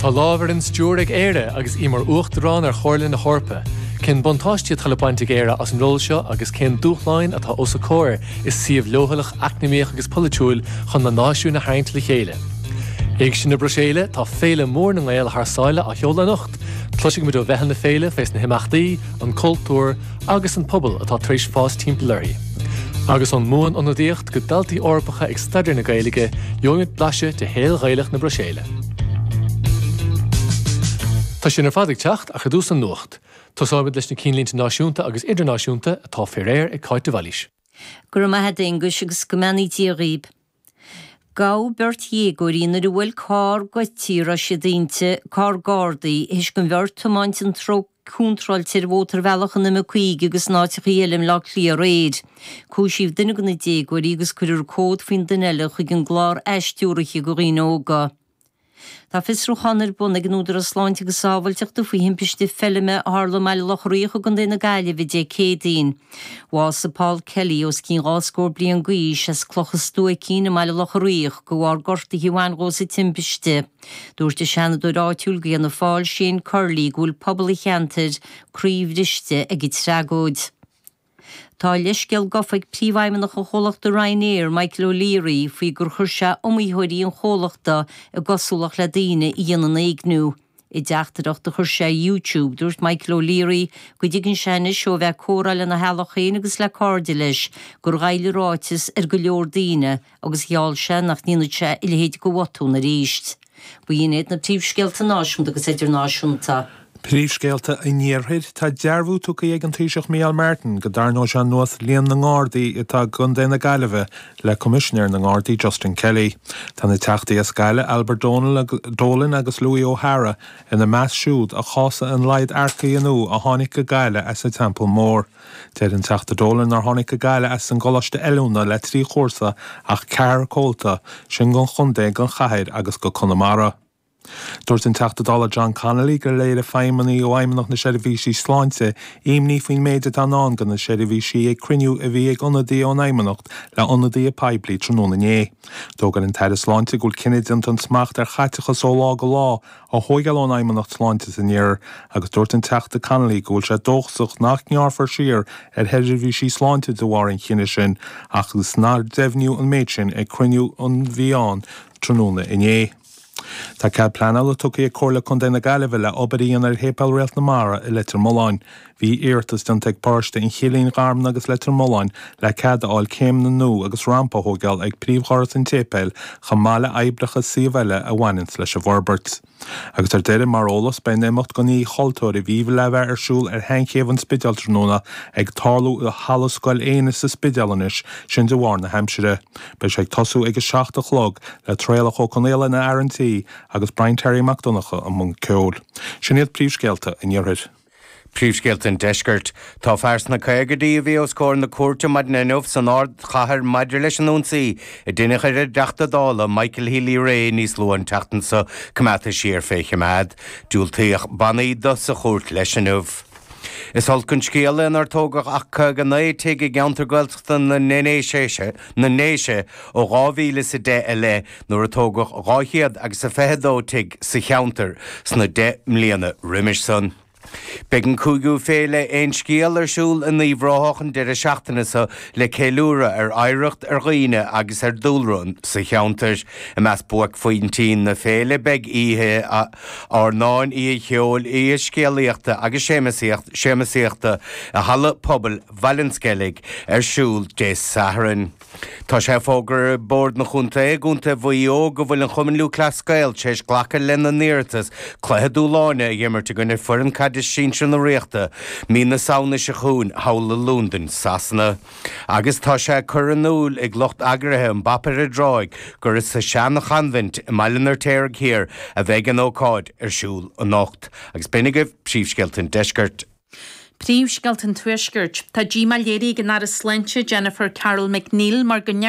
Tá lámh ar an stiúir ag Éire agus í mar Uachtarán ar Chomhairle na hEorpa. Cén buntáistí atá le baint ag Éire as an ról seo agus cén dúshláin atá os a comhair i suíomh leochaileach eacnamaíoch agus polaitiúil chun na náisiúin a tharraingt le chéile? Éigse na Bruiséile, Tá féile mhór na nGael thar sáile á sheoladh anocht. Cloisfidh muid ó mheitheal na féile faoi na himeachtaí, an cultúr agus an pobal atá tar éis fás timpeall uirthi. Agus ón mBuan-Ionadaíocht, go daltaí Eorpacha ag staidéar na Gaeilge, gheobhaimid blaiseadh de shaol Ghaelach na Bruiséile. Tá sin ar fad ag teacht ach ar dtús an nuacht. Tosóimid leis na cinnlínte náisiúnta agus idirnáisiúnta atá faoi réir ag Cáit de Bhailís. Go raibh maith a'd, Aonghus, agus go mbeannaí Dia dhaoib. Gabhadh beirt dhéagóirí nuair a bhuail carr goidte a raibh siad inti, carr Gardaí, théis don bheirt tiomáint an treo, Contráilte ar mhótarbhealach an M50 agus in áiteachaí eile i mBleá Cliath aréir. Cúisíodh duine de na déagóirí agus cuirfear comhad faoin duine eile chuig an gclár ais-stiúraithe do dhaoine óga. Tá fiosrúchán ar bun ag an Údarás Sláinte agus Sábháilteachta faoi thimpiste feilme a tharla i mBaile Locha Riach i gContae na Gaillimhe Dé Céadaoin. Bhásaigh Paul Kelly, os cionn dhá scór bliain d'aois, as Cloch a' Stuaicín i mBaile Locha Riach de bharr gortaithe a bhain dhó sa timpiste. Dúirt an Seanadóir áitiúil d'Fhianna Fáil Shane Curley go bhfuil pobal an cheantair croíbhriste ag an tragóid. Tá a leithscéal gofa ag Príomhfheidhmeannach an chomhlachta Ryanair, Michael O'Leary, faoi gur chuir sé iomaítheoirí an chomhlachta i gcosúlacht le daoine a dhéanann éigniú. I dteachtaireacht a chuir sé ar YouTube, dúirt Michael O'Leary go dtuigeann sé anois ó bheith ag comhrá lena theaghlach féin agus le cairde leis gur ghoill a ráiteas ar go leor daoine agus gheall sé nach ndéanfaidh sé a leithéid go bhotún arís. B'in iad na príomhscéalta náisiúnta agus idirnáisiúnta. Príomhscéalta an Iarthair, Tá dearbhú tugtha ag an Taoiseach Micheál Martin go dtarraingeoidh sé anuas líon na nGardaí atá i gContae na Gaillimhe le Coimisinéir na nGardaí Justin Kelly. Tá na Teachtaí as Gaillimh Albert Dolan agus Louis O'Hara ina measc siúd a chásaigh an laghad earcaigh nua a tháinig go Gaillimh as an Teampall Mór. Deir an Teachta Dolan nár tháinig go Gaillimh as an gcoláiste oiliúna le trí chúrsa ach ceathrar comhalta, sin gon chontae, gon chathair agus go Conamara. Dúirt an Teachta Dála John Connolly gur léirigh feidhmeannaigh ó Fheidhmeannacht na Seirbhíse Sláinte imní faoin méid atá i ndán do na seirbhísí ag cruinniú a bhí ag ionadaithe ón Fheidhmeannacht le ionadaithe poiblí tráthnóna inné. D'fhógair an tAire Sláinte go bhfuil cinneadh déanta an smacht ar chaiteachas ó lá go lá á thóigeáil ón Fheidhmeannacht Sláinte san iarthar agus dúirt an Teachta Connolly go bhfuil sé dóchasach nach ngearrfar siar ar sheirbhísí sláinte de bharr an chinnidh sin ach fós nár deimhníodh an méid sin ag cruinniú a bhí ann tráthnóna inné. Tá cead pleanála tugtha ag Comhairle Contae na Gaillimhe le obair a dhéanamh ar Shéipéal Réalt na Mara i Leitir Mealláin. Bhí iarratas déanta ag paróiste an Chillín, Gharmna agus Leitir Mealláin le cead a fháil céimeanna nua agus rampa a thóigeáil ag príomhdhoras an tséipéil chomh maith le oibreacha suímh eile a bhaineanns leis an bhforbairt. Agus ar deireadh, mar eolas, beidh an imeacht don Oíche Chultúir a bhí le bheith ar siúl ar Shean-Chéibh an Spidéil tráthnóna ag tarlú i Halla Scoil Éinne sa Spidéal anois, sin de bharr na haimsire. Beidh sé ag tosú ag a seacht a chlog le Traolach Ó Conghaola ina fhear an tí agus Brian Terry Mac Donncha i mbun ceoil. Sin iad príomhscéalta an Iarthair. Príomhscéalta an Deiscirt. Tá fear sna caogaidí a bhí os comhair na cúirte maidin inniu san ardchathair maidir leis an ionsaí a deineadh ar an dTeachta Dála Michael Healy-Rae níos luaithe an tseachtain seo coimeádta siar fé choimeád. Diúltaíodh bannaí do sa chúirt leis inniu. Is olc an scéal é nár tógadh ach 59 tigh i gceantar Gaeltachta na nDéise ó 2010 i leith nuair a tógadh 222 tigh sa cheantar sna deich mbliana roimis san. Beidh an cúigiú féile Aon Scéal ar siúl in Uíbh Ráthach an deireadh seachtaine seo le ceiliúradh ar oidhreacht, ar dhaoine agus ar dúlra sa cheantar. I measc buaicphointí na féile beidh oíche airneáin, oíche cheoil, oíche scéalaíochta agus seamsaíochta i Halla Pobail Bhaile an Sceilg ar siúl Dé Sathairn. Tá sé fógartha ag Bord an Chontae i gContae Mhaigh Eo go bhfuil an Cumann Lúthchleas Gael tar éis glacadh lena n-iarratas cluiche dúshláin a dh'imirt i gcoinne foireann caide sinsir na Ríochta mí na Samhna seo chugainn thall i Londain Shasana. Agus tá sé ag cur in iúil ag lucht eagraithe an Phop-Up Gaeltacht gurb sa Seanachoinbhint i mBaile an Fheirtéaraigh Thiar a bheidh an ócáid ar siúl anocht. Agus b'in agaibh príomhscéalta an deiscirt. Príomhscéalta an Tuaiscirt. Tá díomá léirithe ag an Aire Sláinte Jennifer Carroll MacNeill mar go ndeir